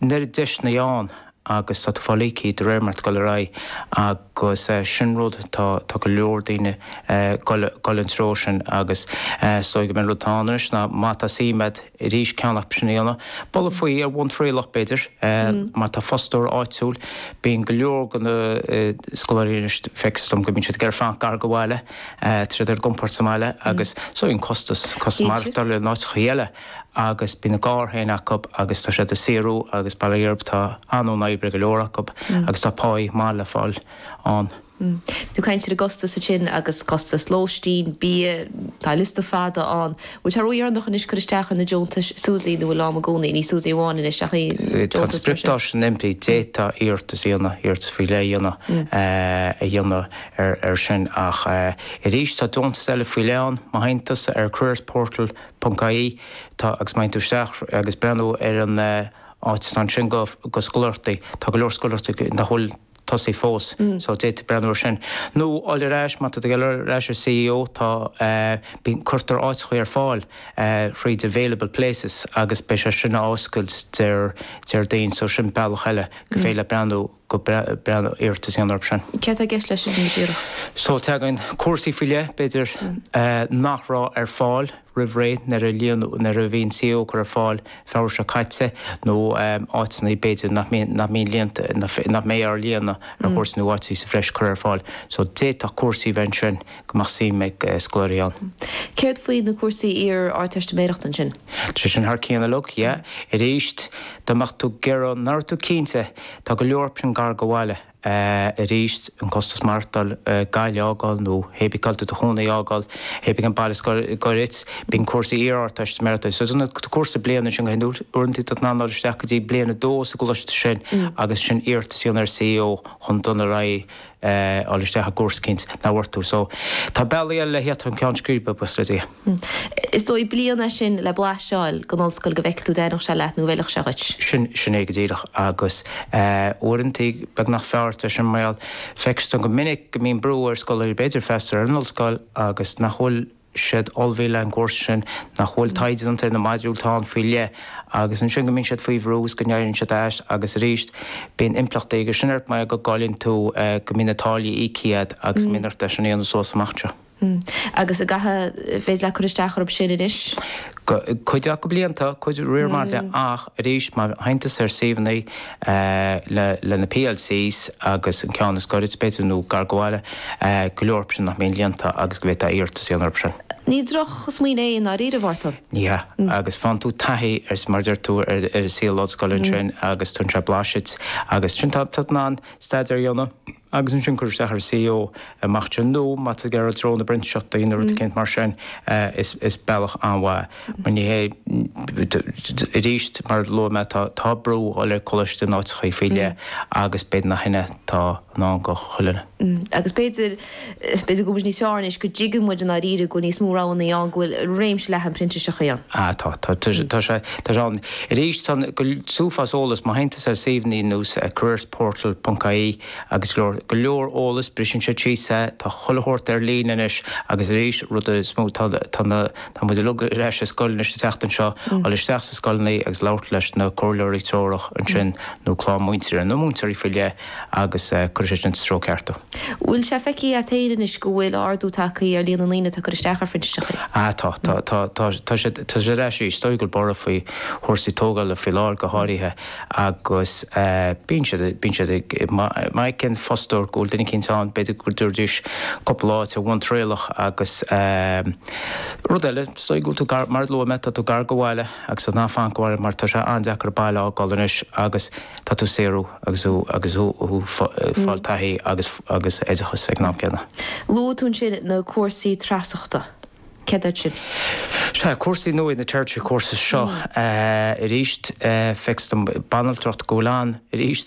Nuair atá deiseanna ann agus tá tú ag fáil íoctha, de réir mar atá tú ag dul ar aghaidh agus sin rud tá tá go leor daoine ag dul sa treo sin agus is dóigh go mbeidh rud atá ann anois ná Mata C Med arís ceann acu sin a dhéanamh. Bualadh faoi ar bhonn trialach b'fhéidir mar tá fostóir áitiúil bíonn go leor de na scoláirí anois feictear dom go mbíonn siad ag fanacht gar do bhaile, tá siad ar a gcompord sa mbaile agus so bhíonn costas costas maireachtáil in áiteachaí eile. agus bíonn a gcarr féin acu agus tá siad ag saothrú agus bail ó Dhia orthu tá an-luí le obair ag go leor acu agus tá pá maith le fáil ann. Tú caint ar an gcostas ansin agus costas lóistín, bia, tá liosta fada ann. Bhfuil sé ródheireanach anois cur isteach ar na deontais SUSI nó bhfuil am i gcónaí, ní SUSI amháin anois ach aon deontas mar sin? Tá an spriocdháta sin imithe, d'fhéadfadh iarratas a dhéanamh, iarratas faoi leith a dhéanamh, a dhéanamh ar sin ach arís tá deontais eile faoi leith ann, má théann tusa ar Careers Portal, ponc ie, tá, agus má théann tú isteach agus breathnú ar an áit atá ansin do scoláireachtaí, tá go leor scoláireachtaí nach bhfuil tosaithe fós so d'fhéadfadh tú breathnú ar sin. Nó a ghoil ar ais, má tá tú ag goil ar ais ar CAO tá, bíonn, cuirtear áiteachaí ar fáil thríd available places agus beidh sé sin á oscailt Déar, Déardaoin so sin bealach eile gur féidir leat breathnú. agus déan iarratas orthu sin. Céard tá i gceist leis sin go díreach? So tagann cúrsaí faoi leith, b'fhéidir, nach raibh ar fáil roimh ré nuair a líonadh, nuair a bhí an CAO á chur ar fáil Feabhra seo caite nó áiteanna b'fhéidir nach mbíonn, nach mbíonn líonta, nach mbeidh á líonadh ar chúrsaí nó áiteanna sa bhreis curtha ar fáil. So d'fhéadfadh cúrsaí a bheith ansin go mbeadh suim ag scoláirí ann. Céard faoi na cúrsaí iar-Ardteistiméireachta ansin? Tá siad sin thar cionn uilig, yeah. Arís, dá mbeadh tú ag iarraidh, mura raibh tú cinnte, tá go leor acu sin gar do bhaile. Arís, an costas maireachtáil, Gaillimh a fhágáil nó cébí cá bhfuil tú i do chónaí a fhágáil, cébí cén baile is gaire dhuit, bíonn cúrsaí iar-Ardteistiméireachta, so na cúrsaí bliana ansin go hiondúil, uaireanta tá tú in ann fáil isteach go dtí bliain a dó sa gcoláiste sin agus sin iarratas a dhéanamh ar CAO chun dul ar aghaidh. fháil isteach i gcúrsa éicint ná bhfuair tú. So tá bealaí eile le haghaidh do cheann scríbe a shroicheadh. Is dóigh bliain é sin le blaiseáil den ollscoil go bhfeicfidh tú an dtaitneodh sé leat nó an bhfeilfeadh sé dhuit. Sin, sin é go díreach agus uaireanta beagnach gur fearr é sin mar gheall, feictear dom go minic go mbíonn brú ar scoláirí b'fhéidir freastal ar an ollscoil agus nach bhfuil, siad ullmhaithe le an gcúrsa sin, nach bhfuil taighde déanta ar na modúil atá ann faoi leith agus ansin go mbíonn siad faoi bhrú is go n-éirionn siad as agus arís bíonn impleachtaí aige sin ort mar go gcailleann tú go mbíonn na táillí íoctha agat agus go mbíonn ort é sin a dhéanamh suas amach anseo. Agus an féidir leat cur isteach orthu sin anois? Cuid acu beidh siad líonta, cuid acu is féidir leat ach arís má théann tusa ar suíomhanna, le na PLCs agus an ceann is goirid, b'fhéidir, nó gar go bhaile, go leor acub sin nach mbíonn líonta agus go bhféadfá iarratas a dhéanamh orthub sin. Ní drochsmaoineamh é i ndáiríre, a Mháirtín. Ní hea. Agus faigheann tú taithí ar, mar a deir tú, ar saol ollscoile ansin agus tugann sé blaiseadh dhuit agus ansin tá tú in ann staidear a dhéanamh, agus ansin cur isteach ar CAO amach ansin nó má tá tú ag iarraidh i dtreo na bprintíseachtaí nó rud eicínt mar sin is bealach an-mhaith mar ní hé arís mar a luaigh mé tá brú dhul ag coláiste in áiteachaí faoi leith agus b'fhéidir nach shin atá i ndán go chuile dhuine. Agus b'fhéidir B'fhéidir go bhfuil sé níos fearr anois go dtuigeann muid i ndáiríre go bhfuil níos mó roghanna ann, go bhfuil réimse leathan printíseacha ann. Tá, tá. Tá sé, tá sé ann. Arís, tá an, tá an t-uafás eolas, má théann tusa ar suíomhannaí ar nós careersportal ponc ie agus go leor, go leor eolas, briseann siad síos é, tá chuile shórt ar líne anois agus arís, rud is mó, tá, tá na, tá muid uilig ar ais i scoil anois an tseachtain seo, dul isteach sna scoileannaí agus labhairt leis na comhairleoirí treorach ansin nó le múinteoir, nó múinteoirí faoi leith, agus cuirfidh sé sin sa treo ceart thú. Bhfuil sé feicthe a't féin anois go bhfuil ardú tagtha ar líon na ndaoine atá ag cur isteach ar phrintiseachaí? Tá, tá, tá, tá, tá, tá siad, tá siad ar ais arís. Is dóigh go bhfuil borradh faoi chúrsaí tógála faoi láthair go háirithe agus eh bíonn siad, bíonn siad ag má fheiceann fostóir go bhfuil duine eicínt ann b'fhéidir go dtabharfaidís cúpla lá ar bhonn trialach agus eh rud eile is dóigh go bhfuil tú gar, mar a luaigh mé, tá tú gar go bhaile. Agus in ann fanacht sa mbaile mar tá sé an-deacair baile a fhágáil anois agus tá tú ag saothrú agus thú agus thú ag fáil taithí agus agus oideachas ag an am céanna. Luaigh tú ansin na cúrsaí treasacha. Céard iad sin? Sea, cúrsaí nua iad na Tertiary Courses seo. Arís, feictear dhom banaltracht go bhfuil ann arís.